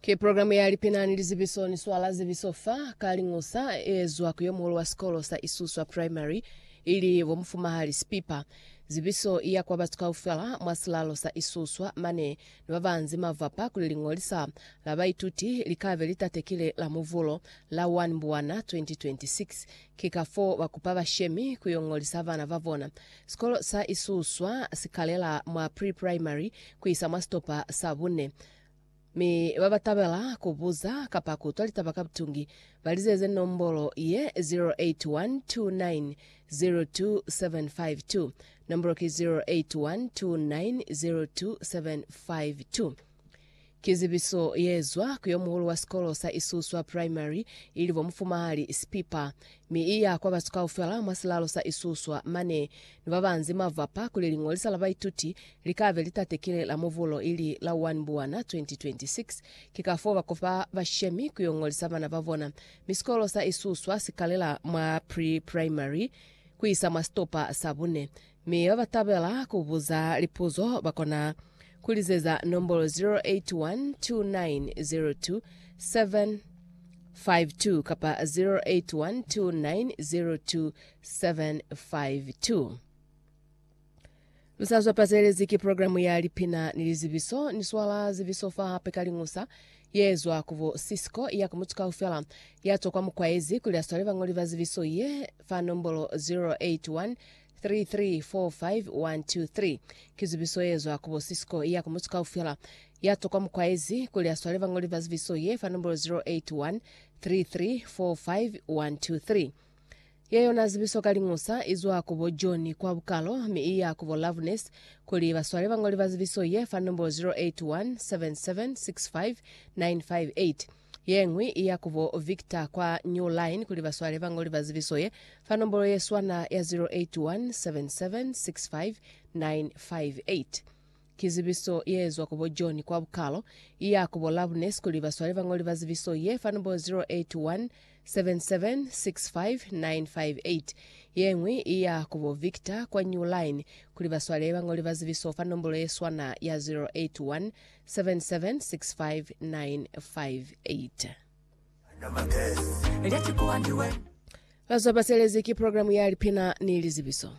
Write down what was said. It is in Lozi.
Ki programu ya lipina ni lizibiso ni swala zibiso fa ka lingusa e ezwa ku yomuhulu wa sikolo sa Isuswa Primary ili bo Mufumahali Sipipa. Zibiso i ya kwa batu kaufela mwa silalo sa Isuswa mane ni ba ba nzi mavapa kuli liñolisa la baituti li ka be li tatekile Lamuvulo la 1 Mbwana 2026 Ki kafoo ba kupa bashemi ku yo ñolisa bana ba bona. Sikolo sa Isuswa si kalela mwa pre-primary ku isa mwa sitopa sa bune. Mi ba ba tabela ku buza kapa ku utwa litaba ka butungi, ba lizeze nombolo ye, 0812902752. Nombolo ki 0812902752. Ki zibiso ye zwa ku yo muhulu wa sikolo sa Isuswa Primary, ili bo Mufumahali Spipa, mi i ya kwa batu kaufela mwa silalo sa Isuswa. Mane ni ba banzi mwa vapa kuli liñolisa la baituti li ka be li tatekile la Mubulo ili la 1 Mbwana 2026. Ki kafoo ba kopa bashemi ku yo ñolisa bana ba bona, mi sikolo sa Isuswa si kalela mwa pre-primary ku isa mwa sitopa sa bune. Mi ba ba tabela ku buza lipuzo ba kona ku lizeza nombolo 0812902752 kapa 0812902752. Lu sa zwa pazelezi ki programu ya lipina ni lizibiso. Ni swala zibiso fa hape ka liñusa ye zwa ku bo Cisco ya ku mutu kaufela ya twa kwa mukwaezi kuli a swale bañoli ba zibiso ye fa nombolo 0812902752. 3345123 Ki zubiso ye zwa ku bo Cisco iya ku mutu kaufela ya tokwa mu kwaezi kuli a swale bañoli ba zubiso ye fa nombolo 0813345123. Ye yona zubiso ka liñusa i zwa ku bo John kwa bukalo mi i ya ku bo Loveness kuli ba swale bañoli ba zubiso ye fa nombolo 0817765958. Yeñwi i ya ku bo Victor kwa New Line kuli ba swale bañoli ba zibiso ye fa nombolo ye swana ya 0817765958. Ki zibiso ye zwa ku bo John kwa Bukalo. I ya ku bo Loveness kuli ba swale bañoli ba zibiso ye fa nombolo 0817765958. Yeñwi i ya ku bo Victor kwa New Line kuli ba swale bañoli ba zibiso fa nombolo ye swana ya 0817765958. 7765958. Bazwa Baselezi ki programe ya lipina ni lizibiso.